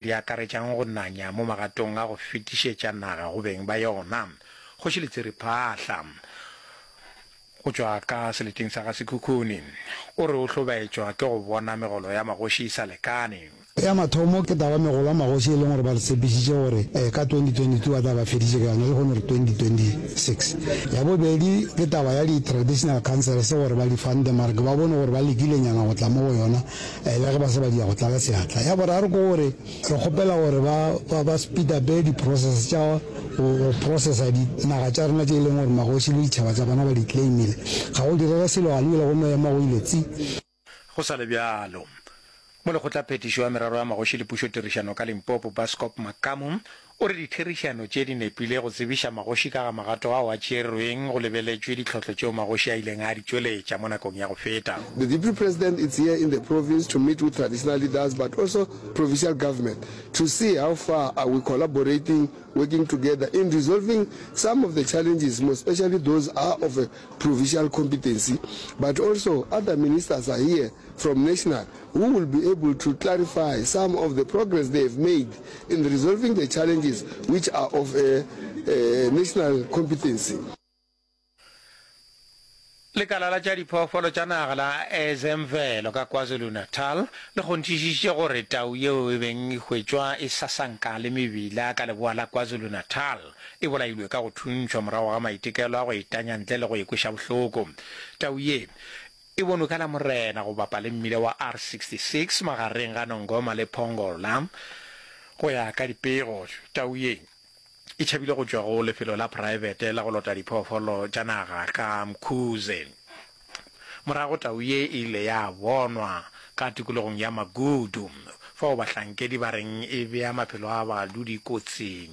di akaretšang go nanya mo magatong a go fetišetša naga go beng ba yona, Kgoši Letsiriphahla, go tšwa ka seleteng sa ga Sekhukhune, o re o hlobaetšwa ke go bona megolo ya magoši e sa lekane. Ya mathomo ke taba ya megolo ya magoši e leng gore ba re tshepišitše gore ka 2022 ba tla ba feditše ka yona lehono re 2026. Ya bobedi ke taba ya di-traditional councils gore ba di fande mara ke ba bone gore ba lekilenyana go tla mo go yona. Eya ge ba se ba dia go tlala seatla. Ya boraro ke gore re kgopela gore ba ba ba speedape di process tša go go processa di naga tša rena tše e leng gore magoši le ditšhaba tša bona ba di claimile. Ga go direge selo ga lebile go no ema go ile tsi. Go sa le bjalo, Molekgotlaphethiši wa Merero ya Magoši le Pušotirišano ka Limpopo, Baskop Makamu, O re ditherišano tše di nepile go tsebiša magoši ka ga magato ao a tšeerweng go lebeletšwe ditlhohlo tšeo magoši a ileng a di tšweletša mo nakong ya go feta. The Deputy President is here in the province to meet with traditional leaders but also provincial government to see how far are we collaborating, working together in resolving some of the challenges most especially those are of a provincial competency but also other ministers are here. from National who will be able to clarify some of the progress they have made in resolving the challenges which are of a national competency. Lekala la tša diphoofolo tša naga la Ezemvelo ka KwaZulu-Natal le kgonthišišitše gore tau yeo e beng e hwetšwa e sasanka le mebila ka leboa la KwaZulu-Natal e bolailwe ka go thuntšhwa morago ga maitekelo a go e tanya ntle le go e kweša bohloko. Tau ye E bonwe ka Lamorena go bapa le mmila wa R66 magareng ga Nongoma le Pongola. Go ya ka dipego, tau ye e tšhabile go tšwa go lefelo la praebete la go lota diphoofolo tša naga ka Mkhuze. Morago tau ye e ile ya bonwa ka tikologong ya Magudu fao bahlankedi ba reng e bea maphelo a badudi kotsing.